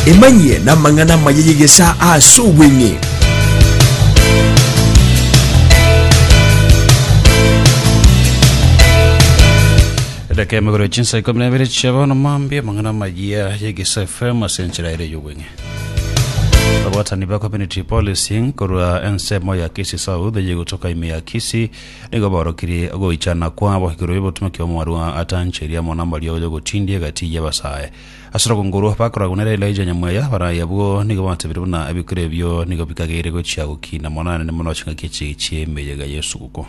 Emanyie namang'ana amaya y'egesaa ase obweng'e. edaka emegoro chinsa ikomi na ibere chia bono mambia amang'ana amaya y'egesa fm ase enchera ere y'obweng'e abwatani ba community policing korwa ensemo ya kisi south yegotoka ime ya kisi Nigo baorokirie ogoichana kwabo igoro y'obotumoki bw'omorua atancheria amo nambaria ogocha gotindia egati y'abasae. Ase obokungu orwo bakorora Gonera Elija Nyamweya baraye abwo, nigo batebire buna ebikuro ebio nigo bikageire gochia gokina Amonene mono chingaki echi chi'emeyega y'esuguko.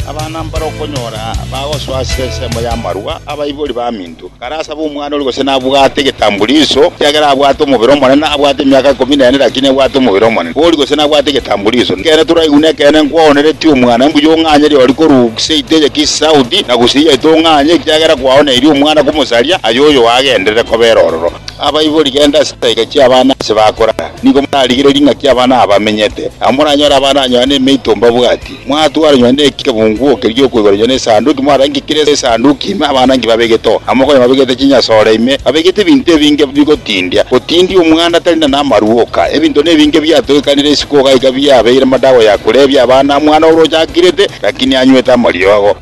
Abana mbare okonyora bagosoa ase ensemo y'amarua, abaibori b'aminto. Karasaba omwana oria gose nabwate egetambuliso, ekiagera abwate omobere omonene, abwate emiaka ikomi nene, lakini ebwate omobere omonene. Boria gose nabwate egetambuliso, Nekeene toraigu nekeene nkwaoneretie omwana, mbuya ong'anye riori korwa seito eye Kisaudi, na gose iye aito ong'anye, ekiagera kwaoneirie omwana komosaria, aye oyo agenderere kobera ororo. Abaibori, genda ase chisaika chi'abana aase bakorara, nigo morarigererie ng'aki abana aba bamenyete, nabo moranyore abana anyoha nemeito mbabwati. Mwatwaranywa nekebunguo eke giokoiboranywa na Esanduki, mwarenge kera Esanduki ime abanangi babegete oo, na mokonye babegete chinyasore ime babegete ebinto ebinge bigotindia, gotindia omwana tari na namarua oka. Ebinto nebinge biatogekanire isiko iga iga biabeire madawa ya korebia abana omwana oria ochakirete, lakini anywete amariogo.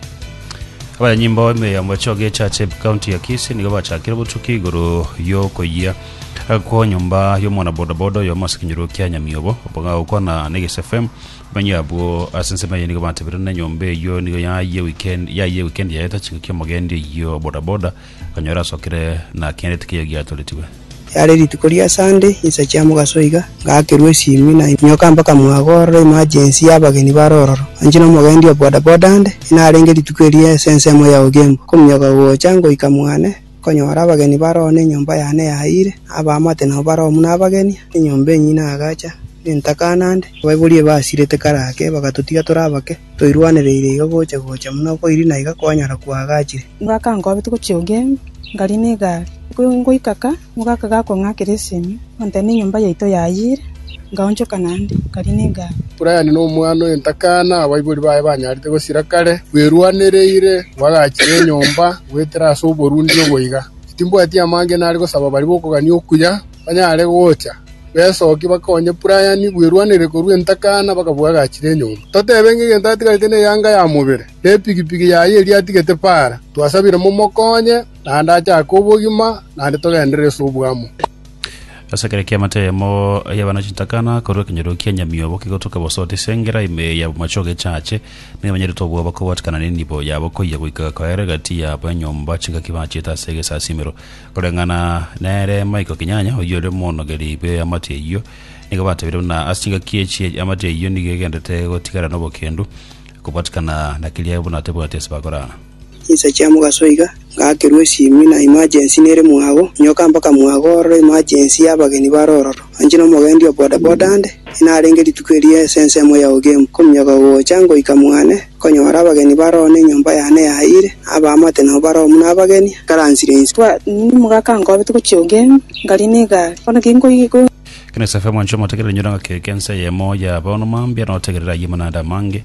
Abanyanyimbo emeyomba echoge echache ep county ya Kisii nigo bachakire obotuki igoro yokoyia kwo nyomba yomwana bodaboda oyomo ase ekenyoro kia Nyamiobo, oboga gokwana na Eges FM. Manyia abwo ase ensemo eye nigo batebeirwe na enyomba eyio nigo yayie weekend yayie weekend yaeta chiko kia omogendi oyio bodaboda okanyora asokire na akenerete keyo giatoretigwe. Riarĩ rituko ria Sunday, insa chia mogaso iga, ngaakerwa esimi na inyoka mpaka mwago ororo emergency ya abageni bare ororo. Inche na omogendi o bodaboda nde, inarenge rituko erio ase ensemo ya ogembo, kominyoka gocha ngoika mwane, Nkonyora abageni baroo nenyomba yane yayiire, na abaamate nabo baroo buna abageni, na enyomba enyinyi na agacha, na entaka naende. Abaiboria ebasirete kare ake bagatotiga tore abake, toirwanereire iga gocha gocha buna okoirina iga kwanyara kwagachire. Bakankobia togochia Ugemi, nkarina egari. Ngoika ka, omogaka gakong'akera esemi, ontebia nenyomba yaito yayiire. ngaonchoka naende, kari negaaka. Brian nomwana oye ntakana, abaibori baye banyarete gosira kare, bwerwanereire bwagachire enyomba goetera ase oborundia oboiga. Timbwati amange nare gosaba baria bokogania okuya banyare gocha. Besokia bakonye Brian bwerwanerire korwa entakana mpaka bwagachire enyomba. Totebe ng'a egento atigarete neyanga ya mobere, na epigipigi yaye eria atigete para. Twasabire momokonye naende achake obogima naende togenderere ase obwamo. Ase ekero ki'amate eyemo y'abana chitakana korwa ekenyoro kia nyamiobo kigotoka bosoote ase engera ime y'abomache ogechache, nigo banyarete obwoba kobwatikana nenibo yabo koyia goika koera egati yabo enyomba chingaki bachiete ase egesasimero. Koreng'ana nere Michael Kinyanya, oyio ore omonogeri bw'eamate eyio, nigo batabire buna ase chingaki echi eamate eyio nigo egenderete gotigara nobokendu kobwatikana na keria buna tebwati ase bakorana. Inse chia mogaso iga, ngaakerwa esiimi na emergency nere mwago, nyoka mpaka mwago ororo emergency y'abageni bare ororo. Anche nomogendi o bodaboda ande, inarenge rituko erio ase ensemo ya Ugembo, nkominyoka gocha ngoika mwane, nkonyora abageni bare oo nenyomba yane yayiire, na abaamate nao bare oo buna abageni, nkaransire inse. Twatindire omogaka nkobe togochia Ugembo, ngarie negari, bono ki nkoigwa. Kene Safi, omwanchwa omotegereri, nyora ng'a kegeka ense eyemo y'abaonwa mambia notegerere ayio amanaanda amange,